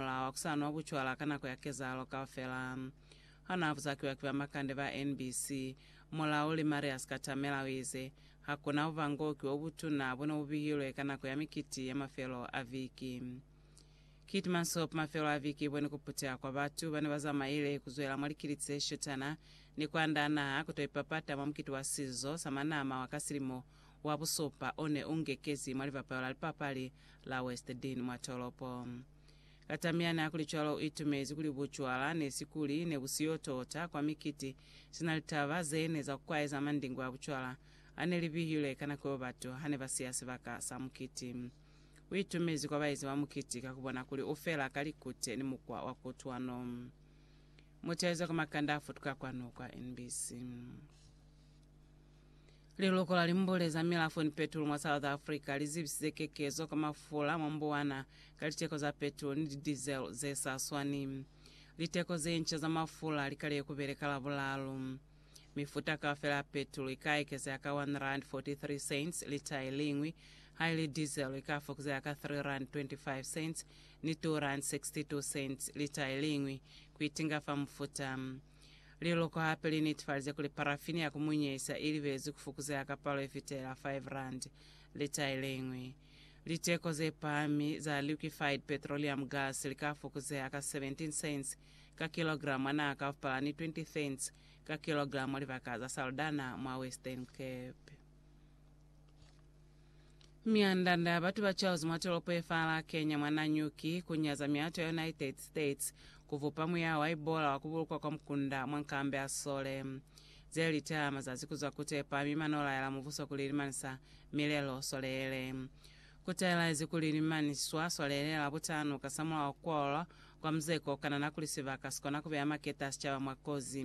Mulao wa ku sa nwa bucwala ka nako ya kezahalo kaufela. Ha naa buzakiwa ki ba makande ba NBC, mulauli Marius Katamela o ize, Ha ku na bubangoki bo butuna bo ne bu bihilwe ka nako ya mikiti ya mafelo a viki. Kit Mansop mafelo a viki i bone ku puteha kwa batu ba ne ba zamaile ku zwela mwa likiliti ze shetana ni ku andaa naha ku to ipapata mwa mukiti wa sizo sa manama wa ka silimo wa busupa o ne u ngekezi mwa libapalo la lipapali la West Dean mwa tolopo. Ka tamyani hakulicwalo u itumezi kuli bucwala ne si kuli ne bu siyo tota kwa mikiti sina litaba ze ne za kukwaeza mandingwe a bucwala a ne li bihilwe ka nako yo batu ha ne ba siya sibaka sa mukiti. U itumezi kwa baezi ba mukiti ka ku bona kuli u fela ka likute ni mukwa wa kutwano. Mutayizo ka makanda a futuka kwanu kwa NBC. Liloko la limbule za milafo ni petulo mwa South Africa li zibisize kekezo ka mafula mwa mbuwana ka liteko za petulo ni di-diesel ze sa swani. Liteko ze nca za mafula li kaliye ku beleka Labulalu. Mifuta kaufela ya petulo i ka ekezeha ka R1.43 lita i liñwi, haili diesel i ka fokuzeha ka R3.25 ni R2.62 lita i liñwi, ku itinga fa mufuta. Liloko hape li netefalize kuli parafini ya ku munyisa i libezwi ku fukuzeha ka palo ye fitela R5 lita ye le ñwi. Liteko ze pahami za liquefied petroleum gas li ka fukuzeha ka 17 cents ka kilogramo a naha kaufpala ni 20 cents ka kilogramo libaka za Saldanha mwa Western Cape. Myanda-nda ya batu ba Charles mwa tolopo ye faala Kenya mwa Nanyuki ku nyaza miato ya United States ku vupa muyaho wa Ebola wa ku bulukwa kwa mukunda mwa nkambe ya Sole. Ze li taha mazazi ku zwa ku tepa mi ma no laela mubuso kuli limanisa milelo Sole yele. Ku taelaezi kuli li maniswa Sole yele la butanu kasamulaho kwalwa kwa muzeko o kanana kuli sibaka si kona ku beya maketa a sicaba mwa kozi.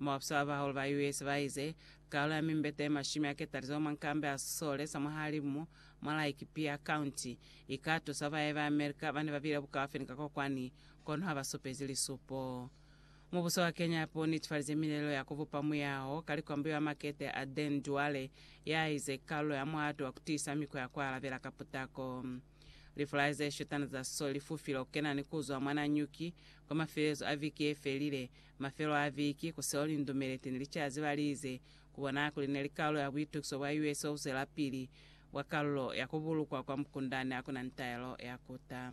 Mobapswa babahulu ba US baize, Kalo ya mimbete ye mashumi a ketalizo mwa nkambi ya sisole sa mwahalimu mwa Lake Pierre County ika tusa baye ba America bane babile bukaufi ni ka kokwani, kono haba supezi lisupo. Mubuso wa Kenya hape u netifalize milelo ya ku bupa muyaho ka likwambuyo ya makete a Dan Duale ya ize, Kalo ya muhato wa ku tiisa mikwa ya ku alabela ka putako. Lifulai ze shutana za so li fufile ku kena ni ku zwa mwa na nyuki kwa mafelelezo a viki ye felile. Mafelelo a viki, ku seo lindumeleti ni licazi ba lize ku bona kuli ne li kalulo ya buitukiso bwa US o zwelapili bwa kalulo ya ku bulukwa kwa mukundani ha ku na ni taelo ya kuta.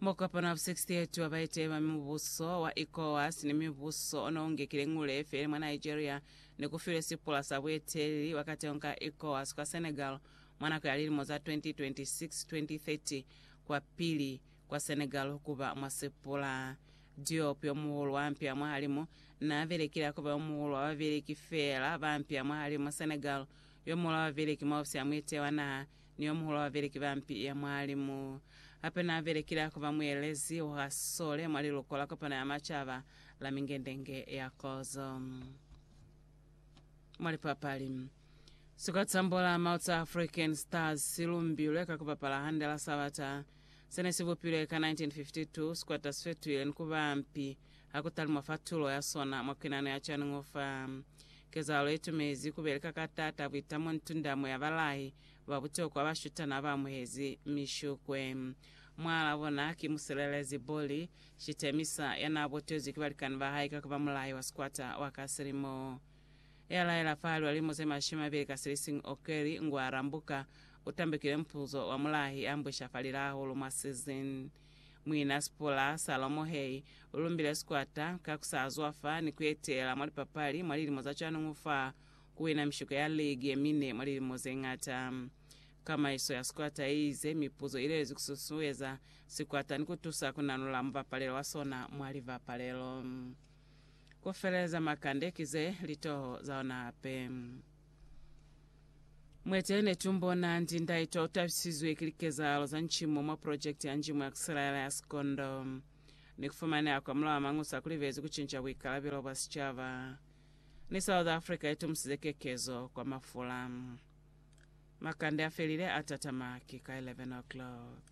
Mwa Kopano 68 wa Baeteli ba Mibuso wa ECOWAS ni mibuso o ne u ngekile ngule feli mwa Nigeria ni ku filwe sipula sa bueteleli bwa kateho ka ECOWAS kwa Senegal mwa nako ya lilimo za 2026-2030 kwa pili kwa Senegal ku ba mwa sipula. Diop, yo muhulu wa mpya mwahalimu, n'a belekile ha ku ba yo muhulu wa babeleki feela ba mpya mwahalimu Senegal, yo muhulu wa babeleki mwa ofisi ya muetehi wa naha Ni yomuhulu wa babeleki ba mpi ya mwa limu. Hape naabelekile ha kuba muelezi wa ka sole mwa liluko la kopano ya macaba la mingendenge ya kozo. Mwa lipapali, Sikotsambula Maoto a African Stars silumbilwe ka kubapala hande la sabata. Se ne si bupilwe ka 1952, Squatters Fetwheel, ni ku ba mpi ha ku talumwa fa tulo ya sona mwa Kwenano ya Chan'ufa. Kezahalo ye tumezi ku beleka ka taata buitamo ni tundamo ya balahi ba butokwa ba shutana ba amuhezi mishukwe. Mwaal'a bona ki musilelezi Bolly Shitemisa ya n'a botezwi ki balikani ba hae ka ku ba mulahi wa squatter wa ka silimo. ya laela fa lilimo ze mashumi mabili ka silisiñwi Okeli ngwa arambuka, u tambekile mupuzo wa mulahi a mbwisha fa lilahulu mwa season. Muina Sipula Salomo Hei u lumbile sikwata ka ku sa zwafa ni ku etela mwa lipapali mwa lilimo za cwanuñu fa ku wina mishiko ya ligi ye mine mwa lilimo ze ñata. Kamaiso ya sikwata i ize mipuzo i lelezi ku susueza sikwata ni ku tusa ku nanula mubapalelo wa sona mwa libapalelo. Ku feleza makande ki ze li toho za ona hape. Mwete ne tu mbona ndi ndaitwa u tabisizwe ki likezahalo za ncimo mwa project ya Njimu ya Kisilaela ya Sikondo, ni ku fumaneha kwa Mulao wa Mañusa ku libezi ku cinca buikalabelo bwa sicaba. Ni South Africa i tumusize kekezo kwa mafula. Makande a felile a tatama ki ka 11 o'clock.